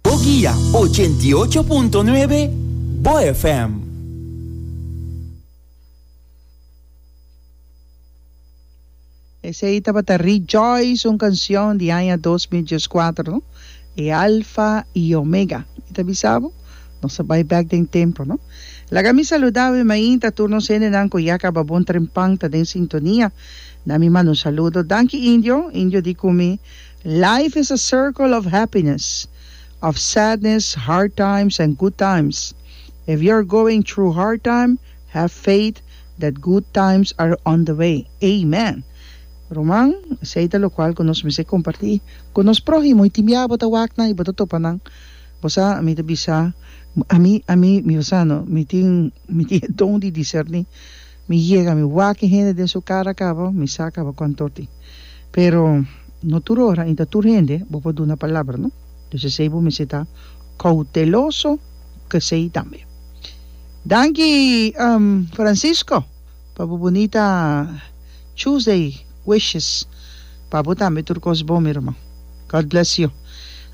Boguia, ochenta i ocho punto nuebe, Bo FM. Esei tabata Rejoice, un cancion di aña dos mil diescuater no, e Alfa y Omega. Mi ta bisa bo, nos a bay bek den templo no. Laga mi saluda awe mainta tur nos hendenan cu ya caba bon trempan ta den sintonia. Na mi mano saludo. Danki Indio, Indio di cu mi. Life is a circle of happiness, of sadness, hard times and good times. If you're going through hard time, have faith that good times are on the way. Amen! Ruman, esei ta lokual ku nos mester kompartí ku nos próhimo. I tin biaha bo ta wak nan i bo ta topa nan, bo sa, mi ta bisa, ami, ami, mi ta sa no, mi tin, mi tin e don di diserní. Mi yega, mi wak hende den su kara kaba, mi sa kaba ku antorti. Pero, no tur ora ni ta tur hende bo por duna palabra, no. Pues esei bo mester ta kouteloso ku esei tambe. Danki, Francisco, pa bo bunita Tuesday wishes pa bo tambe. Tur kos bon, mi ruman. God bless you.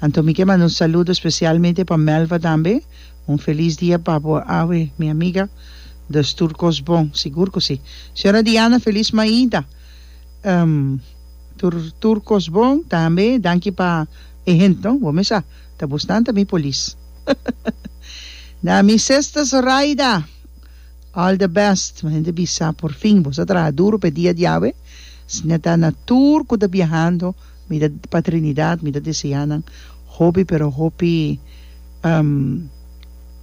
Anto mi ke manda un saludo spesialmente pa Melva tambe. Un felis dia pa bo awe mi amiga, dus tur kos bon, sigur ku si. Señora Diana felis maida, em tur tur kos bon, tambe danki pa e hent no, bo mesa ta busnan ta mi polis. Na mi sesta Zoraida, all the best, mi hende bisa por fin boso traha duro pa e dia di awe, sina ta na tur ku ta biahando, Mi ta pa Trinidad mi ta deseá nan hopi pero hopi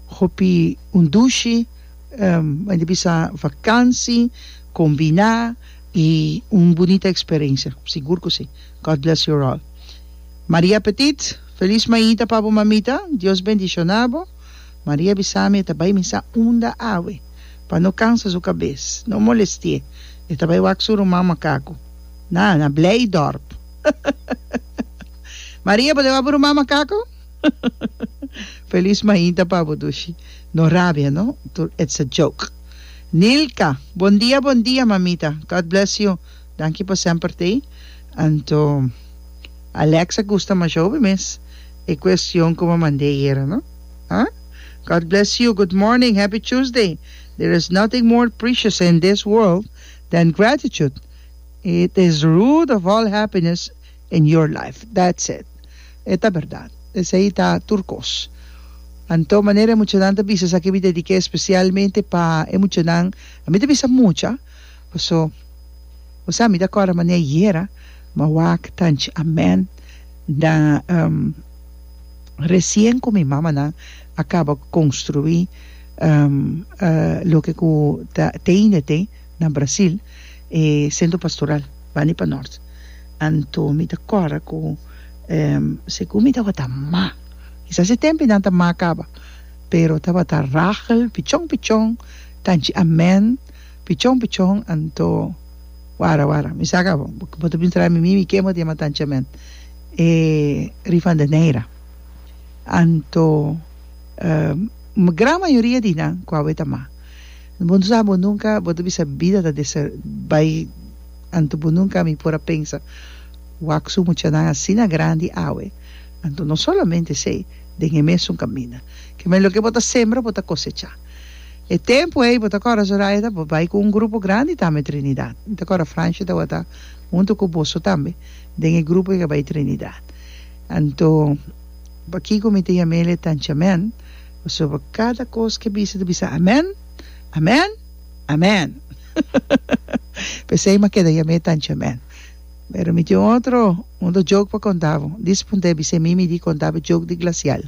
hopi un dushi mende a bisa vakansi kombiná i un bunita eksperensia sigur ku si God bless you all Maria Petit felis maita pa bo mamita Dios bendishoná bo Maria a bisa mi e ta bai misa unda awe pa no kansa su kabes no molestié e ta bai wak su ruman makaku. Na na Blijdorp Maria bo deba bruma makaku Feliz mainta pa bo dushi No rabia no tur it's a joke Nilka Bon dia bon dia mamita God bless you Danki pa semper ta ei Anto Alexa gusta masho be mes e kuestion ku bo mande ayera no ha God bless you Good morning Happy Tuesday There is nothing more precious in this world than gratitude It is root of all happiness in your life that's it e ta berdad esei ta tur kos anto manera e muchanan ta bisa esaki mi dediké especialmente pa e muchanan ami ta bisa mucha paso bo sa mi ta acorda mane ayera ma wak tanchi amen da recien cu mi mamanan a caba construi loke cu ta teine te. Na Brasil e Centro Pastoral bani pa Nort anto mi ta kòrda ku segun mi tabata ma, kisas e tempi nan ta ma kaba pero tabata Rachel pichon pichon tanchi Amen pichon pichon anto wara wara mi sa ka bo bo ta bin traha mi mimi ken bo ta yama tanchi Amen e Rivandeneira anto gran mayoria di nan ku awe ta ma. Bo no sa, bo nunca, bo ta bisa bida ta deser, bai, anto bo nunca mi por a pensa, wak su muchanan asina grandi awe, anto no solamente esey, den e mesun caminda. Keme loke bo ta sembra bo ta cosecha. E tempo ey, bo ta cora Zoraya ta bo bai cu un grupo grandi tambe Trinidad. Mi ta cora Francia tabata hunto cu boso tambe den e grupo ey cu a bai Trinidad. Anto, pakico mi ta yamele tanchamen? Pasobra kada kos ke bisa ta bisa Amen, Amen, Amen. P'esei m'a keda yam'é tanchi Amen. Pero mi tin un otro, un otro joke pa konta bo. Dis punto e bis'é mi mi di konta bo e joke di glasial.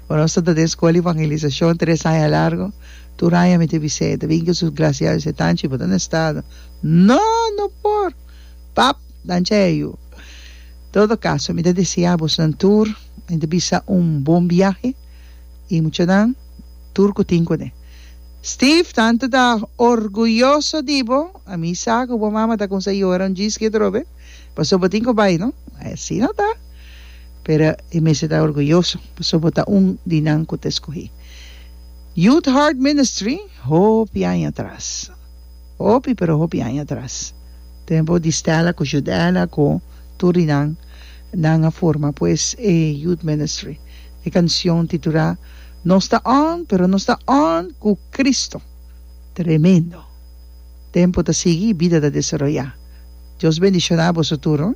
Ora nos tabata den Skol di Evangelisashon tres aña largu, tur aña mi ta bis'é, e ta bini ku su glasial, mi bis'é, Tanchi, bo ta na e stado. No, no por! Pap! Tanchi a e yu. Todo kaso, mi ta desi abosnan tur. Mi ta bisa un bon biahe y muchanan tur cu tin cune. Steve tanto ta orguyoso di bo, a mi sa cu bo mama ta cuminsa yora un djis ki atrobe pasobra bo tin cu bay no, asi no ta pero e mester ta orguyoso pasobra bo ta un di nan cu ta escogi Youth Heart Ministry hopi aña atras. Hopi, pero hopi aña atras. Tempo di Stella cu Judella cu tur di nan, nan a forma pues e Youth Ministry. E cancion titula Nos ta on, pero nos ta on cu Cristo. Tremendo! Tempo ta sigui, bida ta desaroya. Dios bendiciona boso tur.